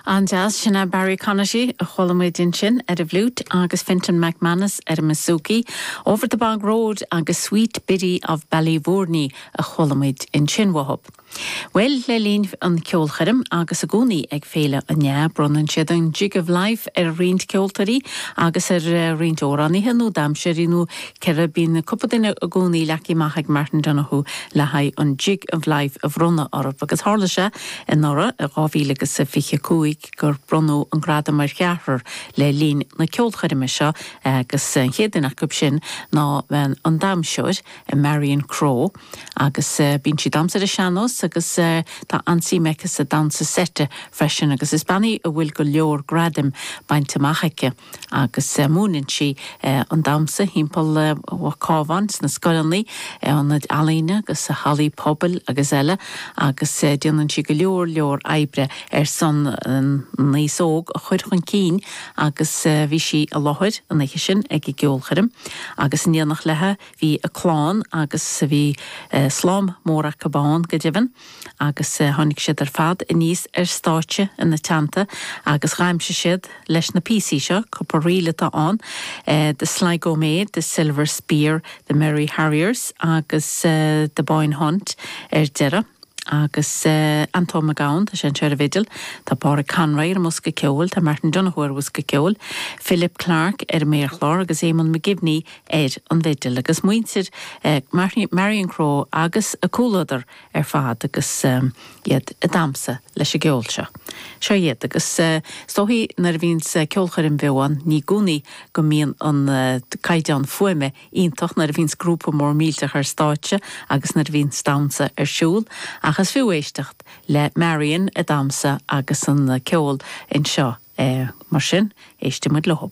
An-deas, sin é Barry Connolly, a chuala muid ansin, ar an bhfliúit agus Fintan McManus ar an mbusúcaí, Over the Bog Road agus Sweet Biddy of Ballyvourney a chuala muid ansin uathu. Bhuel, le linn an cheolchoirm agus i gcónaí ag Féile an NYAH bronnann siad an 'Jig of Life' ar roinnt ceoltóirí agus ar roinnt amhránaithe nó damhsóirí nó ceathrar, bíonn cúpla duine i gcónaí leagtha amach ag Martin Donoghue le haghaidh an Jig of Life a bhronnadh orthu agus tharla sé anuraidh, i 2025, gur bronnadh an gradam ar cheathrar le linn na ceolchoirme seo agus an chéad duine acu sin ná an damhsóir Marion Crowe agus bíonn sí ag damhsa ar an sean-nós agus tá an-suim aici sa damhsa seite freisin agus is bean í a bhfuil go leor gradaim bainte amach aici. agus múineann sí an damsa thimpeall an Chabháin sna scoileanna, ionaid ealaíne agus hallaí pobail agus eile agus déanann sí go leor leor oibre ar son an aos óg a chur chun cinn agus bhí sí i láthair an oiche sin ag an gceolchoirm agus in éineacht leithe bhí a clann agus bhí slám mór acu ann go deimhin. agus tháinig siad ar fad aníos ar stáitse ina teannta agus dhamhsaigh siad leis na píosaí seo, cúpla ríl atá ann, The Sligo Maid, The Silver Spear, The Merry Harriers agus The Boyne Hunt ar deireadh. Agus Antóin Mac Gabhann, tá sé anseo ar an bhfidil, tá Pádraig Conroy ar an mbosca ceoil, tá Martin Donoghue ar bhosca ceoil, Philip Clarke ar an méarchlár agus Éamonn McGivney ar an bhfidil agus muintir Marion Crowe agus a comhluadar ar fad agus iad ag damsa leis an gceol seo. Seo iad agus is dóigh nuair a bhíonns ceolchoirm bheo ann ní i gcónaí go mbíonn an caighdeán fuaime iontach nuair a bhíonns grúpa mór millteach ar stáitse agus nuair a bhíonns damsa ar siúl ach is fiú éisteacht le Marion ag damsa agus an ceol anseo mar sin éistfidh muid leo.